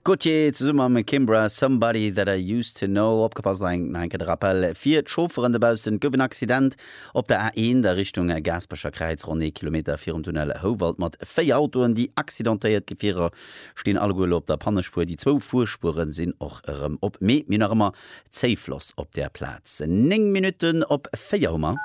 Gauthier zesumme mam Kimbra, Somebody That I Used To Know. Opgepasst, nach eng Kéier de Rappel fir d'Chaufferen dobaussen, Et gouf en Accident op der A1 a Richtung Gaasperecher Kräiz, ronn ee Kilometer virum Tunnel Houwald, mat véier Autoen. Déi accidentéiert Gefierer stinn alleguer elo op der Pannespuer, déi zwou Fuerspuere sinn och erëm op. Mee mir hunn nach ëmmer Zéifloss op der Plaz. 9 Minutten op 4 hu mer.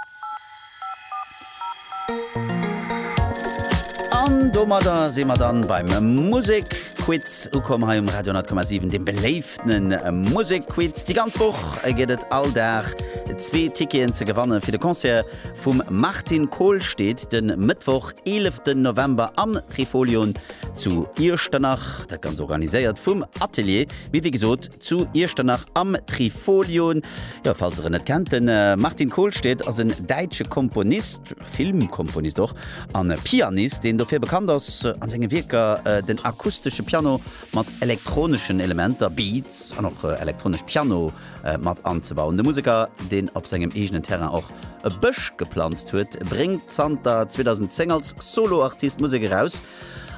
An domadder si mer dann beim Musekquiz ukomm hei um Radio 10,7, dem beléiftenen Musekquiz. Déi ganz Woch gëtt et all Dag zwee Ticketen ze gewannen fir de Concert vum Martin Kohlstedt den Mëttwoch 11. November am Trifolion zu Iechternach. Dat ganz organiséiert vum Atelier. Mee wéi gesot, Zu Iechternach am Trifolion. Jo, falls der en net kennt, den Martin Kohlstedt ass en däitsche Komponist, Filmkomponist och, an e Pianist, deen dofir bekannt ass, an senge Wierker den akustesche Piano mat elektroneschen Elementer, Beats, an och elektronesch Piano mat anzebauen. De Museker, deen op sengem eegenen Terrain och e Bësch geplanzt huet, bréngt zanter 2010 als Solo-Artist Musek eraus.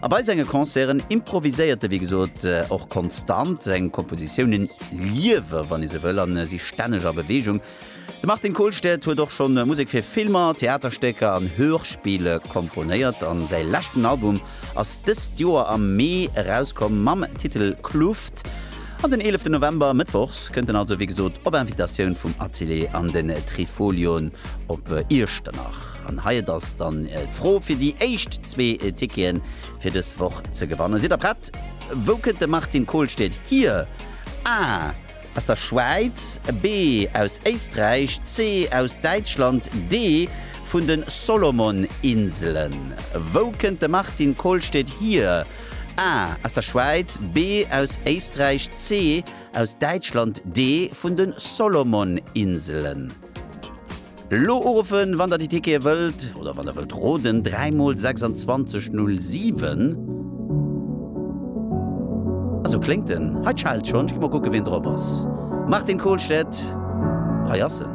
A bei senge Concerten improviséiert de, wéi gesot, och konstant. Seng Kompositiounen liewe, wann ee sou wëll, an si stänneg a Beweegung. De Martin Kolstad huet och scho Musek fir Filmer, Theaterstécker an Hörspiele komponéiert a säi leschten Album ass dëst Joer am Mee erauskomm mam Titel Kluft. An den eeleften November, mëttwochs, kënnt en also, wéi gesot, op Invitatioun vum Atelier an den Trifolion op Iechternach. An hei et ass dann d'Fro fir déi éischt zwee Ticketen fir dës Woch ze gewannen. Sidd der prett? Wou kënnt de Martin Kohlstedt hier? A, Aus der Schwäiz, B, Aus Éisträich, C, Aus Däitschland, D, Vun de Solomon-Inselen. Wou kënnt de Martin Kohlstedt hier? A, Aus der Schwäiz, B, Aus Éisträich, C, Aus Däitschland, D, Vun de Solomon-Inselen. Elo uruffen, wann der déi Tickete wëllt oder wann der wëllt roden, 3 mol 26 07. A sou kléngt en. Hei d'Scheld schonn. Ech gi mol kucke wien drop ass. Martin Kohlstedt, hei ass en.